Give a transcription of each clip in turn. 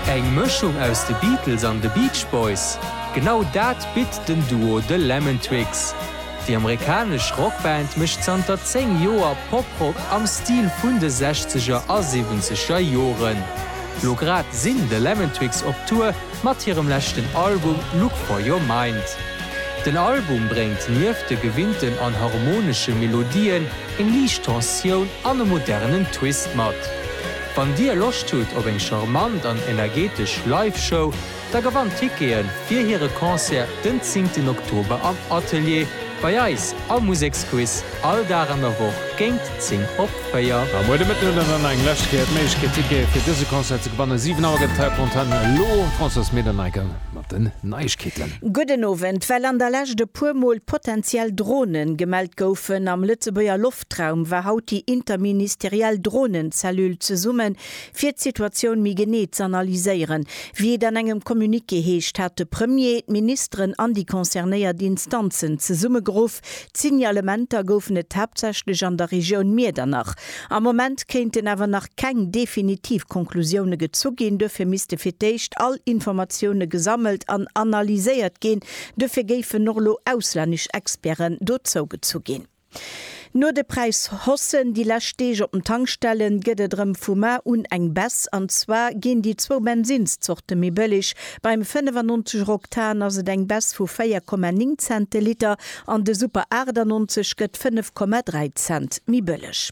Eng Mëschung aus de Beatles an de Beach Boys? Genau dat bitt den Duo The Lemon Twigs. Déi amerikanesch Rockband mécht zanter 10 Joer Poprock am Stil vun de Sechzeger a Siwwenzeger Joren. Lo grad sinn The Lemon Twigs op Tour mat hirem leschten Album Look For Your Mind. Den Album bréngt nieft de gewinnten an harmonesche Melodien eng liicht Tensioun an e modernen Twist mat. Wann dir Loscht hutt op eng charmant an energetesch Live Show, da gewannt Tickete fir hire Concert den 10 en Oktober am Atelier bei eis am Museksquiz, all Dag an der Woch géint 10 op 4. A muer de Mëtten hutt der dann nach eng lescht Kéier d'Méiglechkeet Tickete fir dëse Concert ze gewannen. 7 Auer gëtt d'Terre Fontaine elo Françoise Mederneiker mat den Neigkeeten. Gudden Owend. Well an der Lescht e puer Mol potenziell Drone gemellt goufen am Lëtzebuerger Loftrum, Haaptraum war haut déi interministeriell Dronen-Cellule zesummen, fir d'Situatioun méi genee z'analyséieren. Wéi et an engem Communiqué heescht, hat de Premier d'Ministeren an déi concernéiert Instanzen zesummegeruff. D'Signalementer goufen et haaptsächlech an der Regioun Miedernach. Am Moment kéinten awer nach keng definitiv Conclusioune gezu ginn. Duerfir misste fir d'éischt all Informatioune gesammelt an analyséiert ginn. Duerfir géifen och elo auslännesch Experten dozougezu ginn. No de Präishossen déi lescht Deeg op den Tankstellen, gëtt et erëm vu mar un eng Baisse. An zwar ginn déi zwou Bensinnszorte méi bëlleg. Beim 95 Euro Oktan ass et eng Baisse vu 4,9 Cent de Liter an de Super 98 gëtt 5,3 Cent méi bëlleg.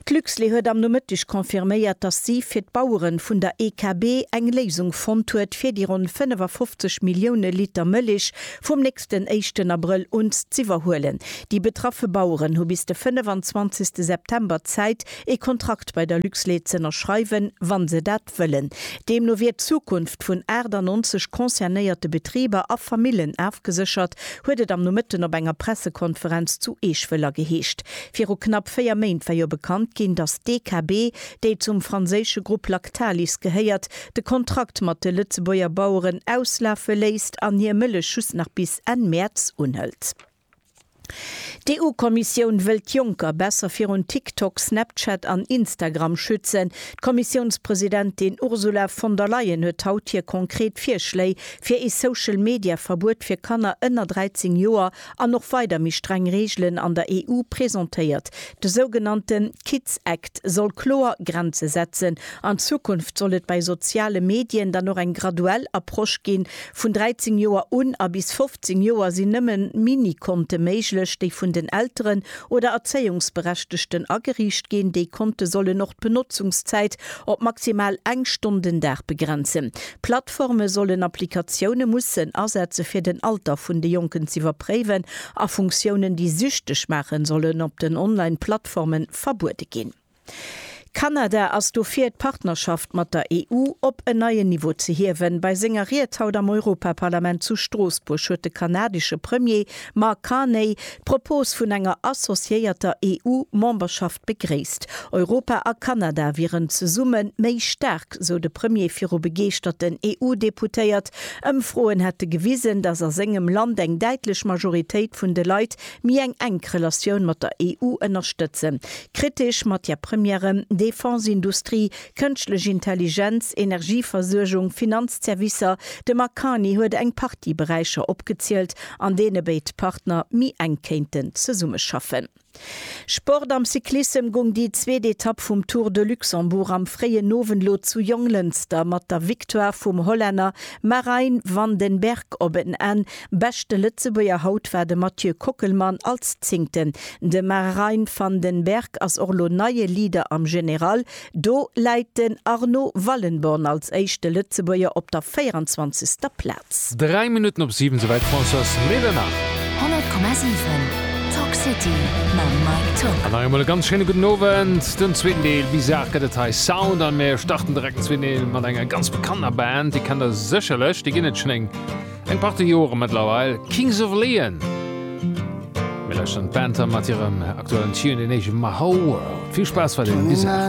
D'Luxlait huet am Nomëtteg confirméiert, datt si fir d'Bauere vun der EKB eng Léisung fonnt huet, fir déi ronn 55 Millioune Liter Mëllech vum nächsten éischten Abrëll un z'iwwerhuelen. Déi betraffe Baueren hu bis de 25. September Zäit, ee Kontrakt bei der Luxlait z'ënnerschreiwen, wa se dat. Prinzip wëllen. Deemno wier d'Zukunft vun 98 concernéierte Betriber a Famillen afgeséchert, huet et am Nomëtten op enger Pressekonferenz zu Eeschwëller geheescht. Viru knapp 4 Méint war jo bekannt ginn, datt d'EKB, déi zum franséische Grupp Lactalis gehéiert, de Kontrakt mat de Lëtzebuerger Baueren auslafe léisst an hir Mëllech just nach bis Enn Mäerz unhëlt. D'EU-Kommissioun wëllt d'Jonker besser virun TikTok, Snapchat an Instagram schützen. D'Kommissiounspresidentin Ursula von der Leyen huet haut hir konkret Virschléi fir ee Social-Media-Verbuet fir Kanner ënner 13 Joer an och weider méi streng Reegelen an der EU presentéiert. De sougenannte Kids Act soll kloer Grenze setzen. An Zukunft soll et bei soziale Medien dann och eng graduell Approche ginn, Vun 13 Joer un a bis 15 Joer sinn nëmmen Mini-Konte méiglech, déi vun den Elteren oder Erzéiungsberechtegten ageriicht ginn. Déi Konte sollen och d'Benotzungszäit op maximal eng Stonn den Dag begrenzen. Plattforme sollen Applikatioune mussen asetze fir den Alter vun de Jonken z'iwwerpréiwen a Funktiounen, déi süchteg maachen, sollen op den Online-Plattforme verbuede ginn. Kanada ass dofir, d'Partnerschaft mat der EU op en neien Niveau ze hiewen. Bei senger Ried haut am Europaparlament zu Stroossbuerg huet de kanadesche Premier Mark Carney d'Propos vun enger associéierter EU-Memberschaft begréisst. Europa a Kanada wieren zesumme méi staark, sou de Premier viru begeeschterten EU-Deputéiert. Ëmfroen hätte gewisen, datt a sengem Land eng däitlech Majoritéit vun de Leit Méi eng enk Relatioun mat der EU ënnerstëtzen. Kritesch Matière Premièren, Defense-Industrie, Kënschtlech Intelligenz, Energieversuergung, Finanzservicer, de Mark Carney huet eng Partie Beräicher opgezielt, an deene béid Partner méi enk kéinten zesummeschaffen. Sport Am Cyclissem goung déi zweet Etapp vum Tour de Luxembourg am fréien Owend lo zu Jonglënster mat der Victoire vum Hollänner Marijn van den Berg op en Enn. Beschte Lëtzebuerger haut war de Mathieu Kockelmann als Zéngten. De Marijn van den Berg ass och lo neie Leader am General. Do läit den Arno Wallenborn als éischte Lëtzebuerger op der 24. Plaz. Dräi Minutten op siwen, souwäit France ass Médernacht. 100,7 Talk City mam Mike Tock. An nach eemol e ganz schéine gudden Owend. Den zweeten Deel, Bizarre, gëtt et hei. Sound an mir starten direkt den zweeten Deel mat enger ganz bekannter Band. Déi kennt der sécherlech, déi ginn et schonn eng. Eng Partie Joren mëttlerweil Kings of Leon. Mir lauschteren d'Band dann mat hirem aktuellen Tune, deen heescht Mahou World. Vill Spaass weiderhin bis ewell.